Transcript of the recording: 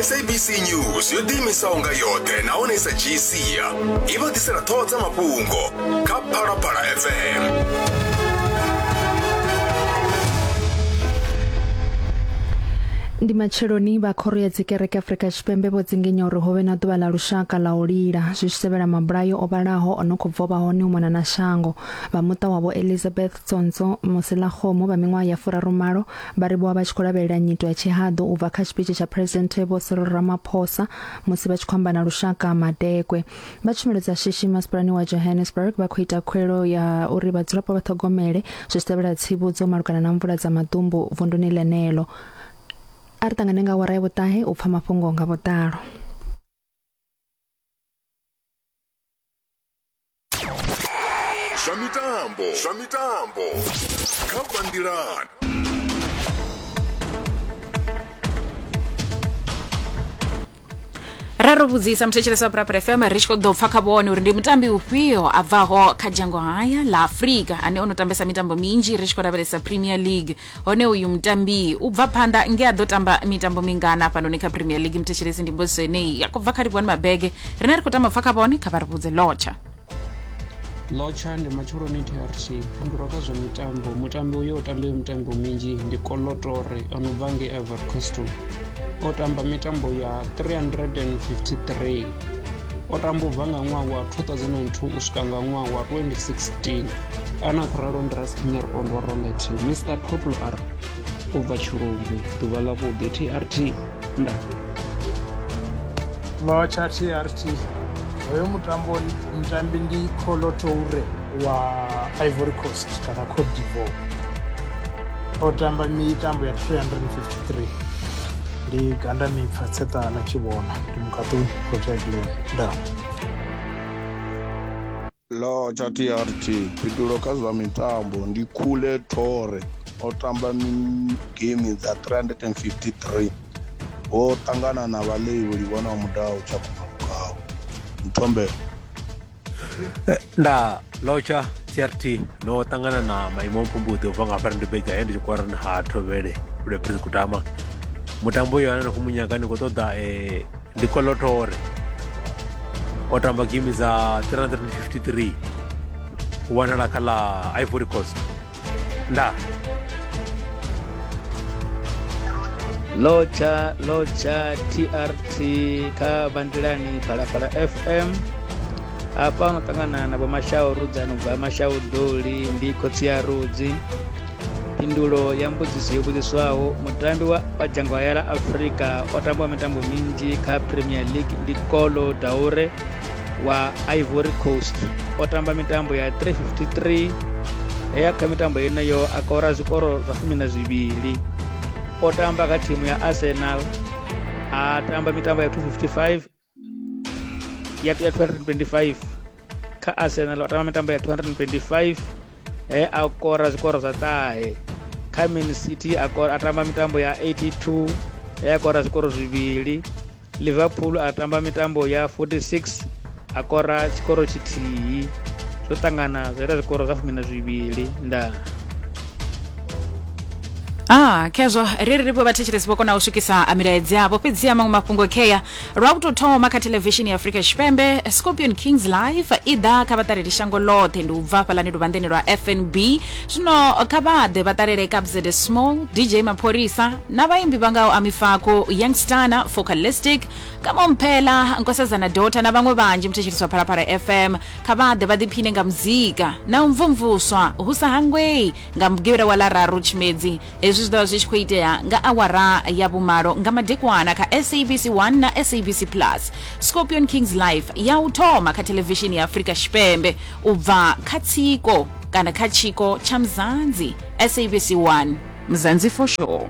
sabc news yo ḓiimisaho nga yoṱhe nahone i sa dzhii sia i vha ḓisela ṱhoho dza mafhungo kha phalaphala fm ndi matsheloni vha khoro ya dzikereke afurika tshipembe vho dzingenya uri ho vhe na ḓuvha ḽa lushaka ḽa u lila zwi tshi tevhela mabulayo o vhalaho o no khou bva vha hone u mona na shango vha muṱa wavho elizabeth Tsontswo, Moselagomo vha miṅwaha ya furarumalo vha livhuwa vha tshi khou lavhelela nyito ya tshihaḓu u bva kha tshipitshi tsha Phresidennde Vho Cyril Ramaphosa musi vha tshi khou amba na lushaka Madekwe. Vha tshumelo dza shishi masipalani wa Johannesburg vha khou ita khuwelo ya uri vhadzulapo vha ṱhogomele zwi tshi tevhela tsivhudzo malugana na mvula dza maḓumbu vunduni ḽeneḽo. A ri ṱangane nga awara ya vhuṱahe u pfa mafhungo nga vhuḓalo. zwa mitambo zwa mitambo kha bandilan ra ro vhudzisa muthetshelesi wa brabra fm ri tshi khou ḓo pfa kha vhone uri ndi mutambi ufhio a bvaho kha dzhango haya ḽa afurika ane o no tambesa mitambo minzhi ri tshi khou lavhelesa premier league hone uyu mutambi u bva phanḓa nge a ḓo tamba mitambo mingana hafhanoni kha premier league muthetshelesi ndi mbudziso yeneyi ya khou bva kha livhuwani mabege rine ri khou tama pfa kha vhone kha vha ri vhudze lotsha lotsha ndi matsheloni trt fhindulwa kha zwa mitambo mutambi uyo o tambayo mitambo minzhi ndi kolotore o no bva ngei ivory coastal o tamba mitambo ya 353 o tamba ubva nga ṅwaha wa 2002 u swika nga ṅwaha wa 2016 ana khou ralo ndi raspinner ondo rolet mr totl r u bva tshilumbi ḓuvha ḽa vhuḓi trt nda lotsha trt hoyo mutambo mutambi ndi colotoure wa ivory coast kana cote divoir o tamba mitambo ya 353 ndi ganda mipfa tseṱana tshi vhona ndi mukaṱuni proteglen nda lo tsha trt fhitulo kha zwa mitambo ndi khule thore o tamba game dza 353 ho ṱangana na vhaḽeivholi vhona mudau tsha kuma mukau mthombela Eh, nda lotsha crt no ṱangana na maimo mpfumbuḓi u bva nga fari ndi bega he ndi tshi kwara ha thovhele lweprise kutama mutambo uyo ane na khou munyaga ndi khou ṱoḓa um eh, ndi kolotore o tamba game dza 353 wanala kha ḽa ivory coast La. lotsha lotsha trt kha bandilani phalaphala fm hafha no ṱangana na vhomashau rudzani u bva mashau doli ndi khotsi ya rudzi phindulo ya mbudziso yo vhudziswaho mutambi wa wa dzhango hayala afrika o tambaho mitambo minzhi kha premier league ndi kolo daure wa ivory coast o tamba mitambo ya 353 he ya kha mitambo yeneyo a kora zwikoro zwa fumi na zwivhili o tamba kha thimu ya arsenal a tamba mitambo ya 255 ya 225 kha arsenal o tamba mitambo ya 225 he a kora zwikoro zwa ṱahe kha man city a tamba mitambo ya 82 he a kora zwikoro zwivhili liverpool a tamba mitambo ya 46 a kora tshikoro tshithihi zwo ṱangana zwa ita zwikoro zwa fumi na zwivhili ndaa Ah, khezwo ri ri ri vho vhathetshelesi vho kona u swikisa a milaedza yavho fhedzi ya maṅwe mafhungo khea lwa u tou thoma kha thelevishini ya afrika tshipembe scorpion kings live i ḓa kha vhaṱaleli shango ḽoṱhe ndi u bva hafhaḽani luvhanḓeni lwa fnb zwino kha vha ḓe vha ṱalele kabzede small dj mapholisa na vhaimbi vha ngaho amifako youngstana focalistic kamomphela nkosazana dota na vhaṅwe vhanzhi muthetsheliswa phalaphala fm kha vha ḓe vha ḓiphine nga muzika na u mvumvuswa hu sa hangwei nga mugivhela wa ḽararu tshimedzi Hezwi zwi ḓo vha zwi tshi khou itea nga awara ya vhumalo nga madekwana kha SABC 1 na SABC Plus. Scorpion Kings Live ya u thoma kha thelevishini ya Afrika Tshipembe u bva kha tsiko kana kha tshiko tsha Mzanzi, SABC 1, Mzansi for Sure.